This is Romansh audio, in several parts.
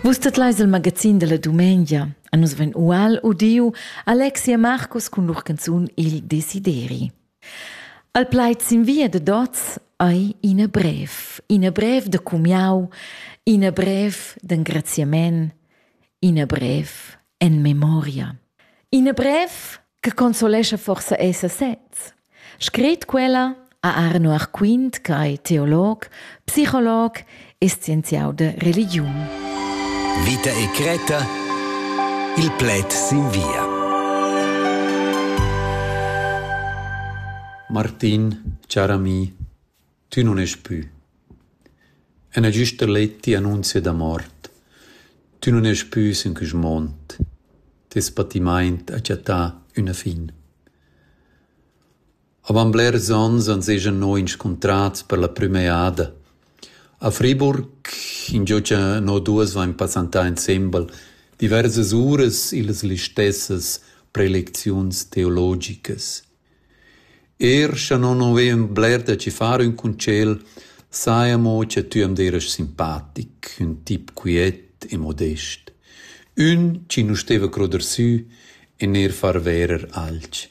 Vus tetleis il magazin dalla dumengia. A nus vegn ual udiu Alexia Marcus cun lur canzun Il Desideri. Al plaid sin via de dots ei ina brev, ina brev de cumiau, ina brev d'engraziament, ina brev en memoria. Ina brev che consolescha forsa esser sez. Scret quella a Arno Arquint, che è teolog, psicolog e scienziau de religiun. Vita e Creta, il pled sin via. Martin, car ami, Tü nun est pü. Ena güsta let ti annunzia da mort. Tü nun est pü sün quist mond. Tes patimaint ha chattà üna fin. Avant blers ons ans esa no inscuntrats per la prüma eada. A Friburg, ingio cha no duos vain passantà insembel, diversas uras illas listessas prelecziuns teologicas. Er scha non ho vegn bler da ci far ün concel, saja amo cha tü am deras simpatic, ün tip quiet e modest. Ün chi nu steva croder sü e neir far verer alch.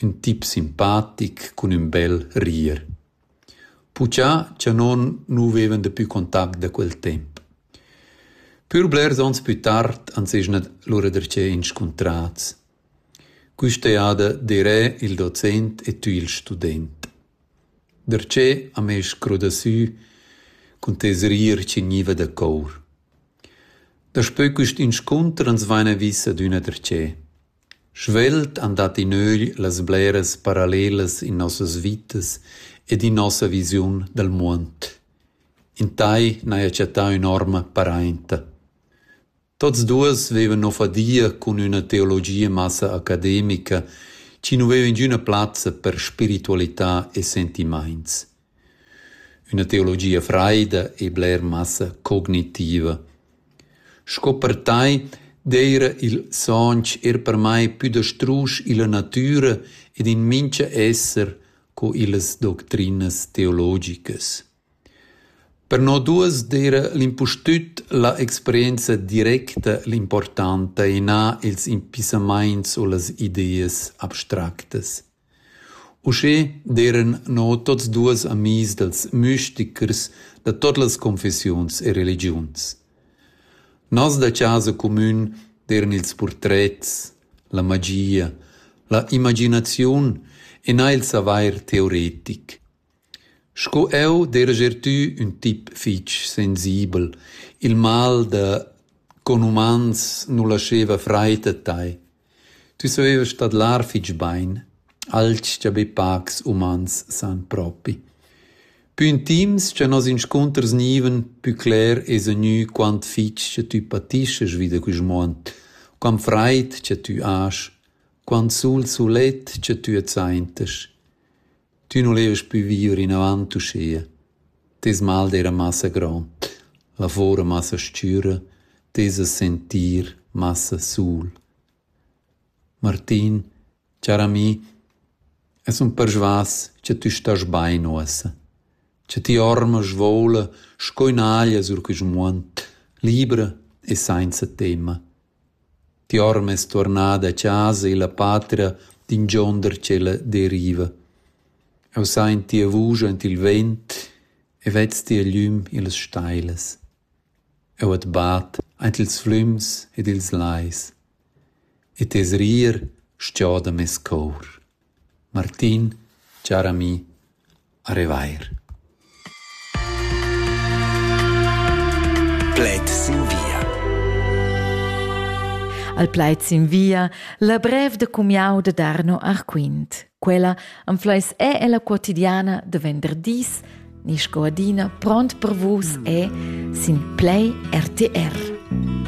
Ün tip simpatic cun ün bel rir. Puchà cha non nu vevan dapü contact da quel temp. Pür blers ons plü tard ans esa lura darcheu inscuntrats. Quista eada d'eirè il docent e tü il student. Darcheu am ais scrudasü cun tes rir chi gniva da cour. Daspö quist inscunter ans vaina vis adüna darcheu. Svelt han dat in ögl las bleras parallelas in nossas vitas ed in nossa visiun dal muond. In tai n'haja chattà ün'orma parainta. Tots duos vevan no fadia cun üna teologia massa academica chi nu veva ingüna plazza per spiritualità e sentimaints. Üna teologia fraida e bler massa cognitiva. Sco per tai d'eira il sonch eir per mai pü da strusch illa natüra ed in mincha esser co illas doctrinas teologicas. Per no duos d'eira l'impustüt la experienza directa l'importanta e na ils impissamaints u las ideas abstractas. Uschè d'eiran no tuots duos amis dals müstichers da tuot las confessiuns e religiuns. Nos da chasa cumün d'eiran ils purtrets, la magia, la imaginaziun e na il savair teoretic. Sco jeu derajer tü ün tip fich sensibel: il mal da conumans nu lascheva fraid a tai. Tü savevast tadlar fich bain, alch cha be pacs umans san propi. Pü intims cha nos inscunters gnivan, pü cler esa gnü quant fich cha tü patischas vi da quist muond, quant fraid cha tü has, quant sul sulet cha tü adsaintas. Tü nu levast pü viver inavant uschia. Teis mal d'eira massa grond, lavor massa s-chüra, teis sentir massa sul. Martin, char ami, es ün persvas cha tü stast bain uossa, cha ti orma svoula sco ün'aglia sur quist muond, libra e sainza temma. Tiorm es tuornada a chasa illa patria d'ingionder tschella deriva. Eu sa in tia vusch aint il vent e vez tia glüm illas stailas. Eu at bat aint ils flüms ed ils lais. E tes rir sgioda meis cour. Martin, char ami, a revair. Plaid sin via. Al plaid sin via la brev da cumiau da Darno Arquint. Quella am fleis è ella quotidiana de venderdis, ni sco adina pront per vus è sin Play RTR.